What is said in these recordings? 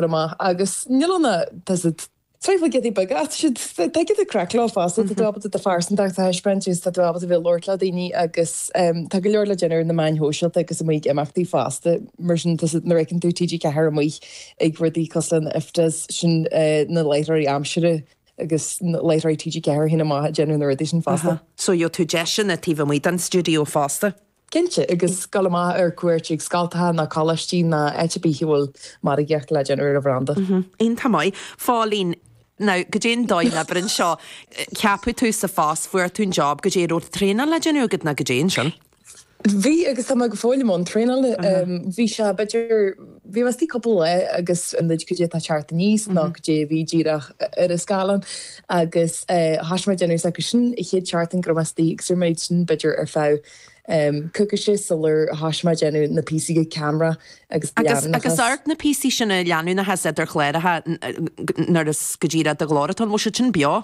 amach agus níl an tada. Sraith Giotaí Beaga as siad. Tá giota craic leo fosta, tá tú ábalta do phearsantacht a thaispeáint is tá tú ábalta bheith ag labhairt le daoine agus tá go leor le déanamh ar na meáin shóisialta agus amuigh ag imeachtaí fosta. Mar sin nuair a fheiceann tú TG4 amuigh ag rudaí cosúil le IFTAs, sin na láithreoirí aimsire agus láithreoirí TG4 féin amach ag déanamh na rudaí sin fosta. So gheobhaidh tú deiseanna taobh amuigh den stiúideo fosta? Cinnte, agus gabháil amach ar cuairt chuig scoltacha ná coláistí ná áit ar bith a bhfuil margaíocht le déanamh ar an bhranda. Iontach maith, a Phóilín. Now, cad é an dóigh ná abair anseo, ceapadh tú sa phost, fuair tú an job, cad é, an raibh traenáil le déanamh agat ná cad é ansin? Bhí agus tá mé go fóill i mbun traenála. Bhí sé, b'fhéidir, Bhí mé istigh cúpla lá agus an rud cad é atá ag teacht aníos nó cad é a bhí díreach ar an scáileán agus thoisigh mé ag déanamh acu sin, an chéad tseachtain go raibh mé istigh agus rinne mé sin b'fhéidir ar feadh coicíse sular thoisigh mé ag déanamh na píosaí go ceamara agus go leanúnachas. Agus ort na píosaí sin de leanúnachas idir chláracha nuair is go díreach do ghlór atá ann, bhfuil siad sin beo?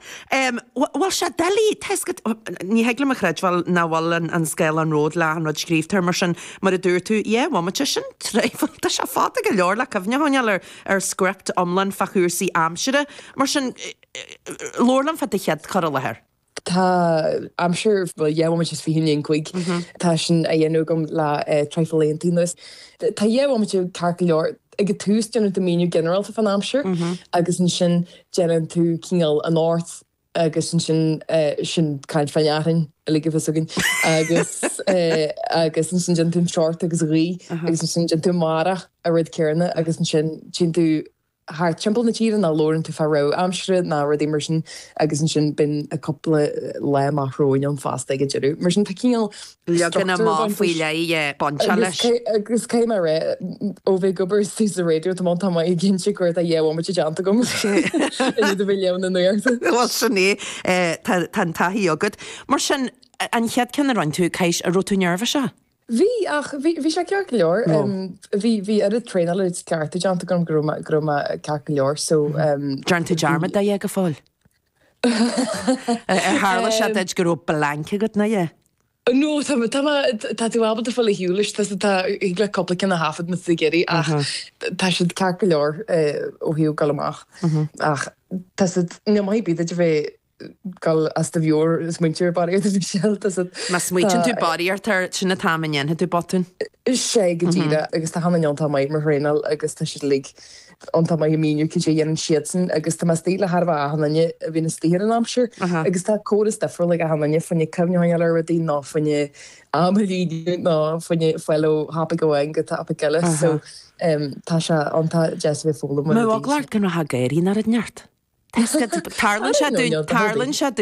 Bhfuil sé doiligh? Tá a fhios agat, ní thig liom a chreidbheáil nach bhfuil an scáileán romhat le achan rud scríobhta air mar sin, mar a dúirt tú. Dhá bhomaite, sin traidhfil. Tá sé fada go leor le cuimhne a choinneáil ar script iomlán fá chúrsaí aimsire, mar sin labhair liom fá do chéad cur i láthair. Tá aimsir, bhuel, dhá bhomaite is fiche i ndiaidh an cúig. Tá sin á dhéanamh agam le traidhfil laethanta anuas. Tá dhá bhomaite ceart go leor. ag an tús déanann tú míniú ginearálta fán aimsir agus ansin déanann tú cineál anocht agus ansin sin caint fán fhearthainn uilig a bhíos againn agus agus ansin déanann tú an teocht agus an ghaoth agus ansin déanann tú amárach an rud céarna agus ansin téann tú thart timpeall na tíre ná labhrann tú fá rabhadh aimsire ná rudaí mar sin agus ansin bíonn cúpla lá amach romhainn ann fosta ag an deireadh mar sin tá cineál leagan amach faoi leith ag baint leis. Agus cé nár ith, ó bheith ag obair istigh sa raidió, tá m'anam tamall ag inse cá huair atá dhá bhomaite déanta agam i ndiaidh a bheith ag léamh na nuachta. Bhuel, sin é. Tá an taithí agat. Mar sin, an chéad ceann a rinne tú, cad é, an raibh tú neirbhíseach? Bhí, ach bhí, bhí sé ceart go leor. Bhí, bhí oiread traenáil, oiread cleachtadh déanta agam go raibh mé, go raibh mé ceart go leor, so. Déanann tú dearmad de a dhath go fóill? Ar tharla sé duit go raibh blanc agat ná a dhath? No, tá mé, tá mé, tá tú ábalta fáil ar shiúl leis, tá, tá, thig leat cúpla ceann a thaifead ins na geirí ach tá siad ceart go leor ó thaobh dul amach ach tá siad, ní maith b'fhéidir bheith ag gabháil as do mheabhair ag smaointiú air barraíocht Michelle, tá siad, Má smaoitíonn tú barraíocht air, sin an t-am a ndéanfaidh tú botún. 'sé go díreach, agus tá achan duine iontach maith do mo thraenáil agus tá siad uilig an t-am ag míniú cad é a dhéanann siadsan agus tá mé sásta labhairt le achan duine a bhíonn istigh ar an aimsir agus tá córas difriúil ag achan duine, faoinne cuimhneamh ar rudaí nó faoinne am a líonadh nó faoinne fáil ó thopaic amháin go topaic eile so tá sé ann, tá deis bheith ag foghlaim rud éigin. Má tá ag leat gan rath ag éirí ná raibh neart. Tarlaíonn sé dúinn, tarlaíonn sé dúinn.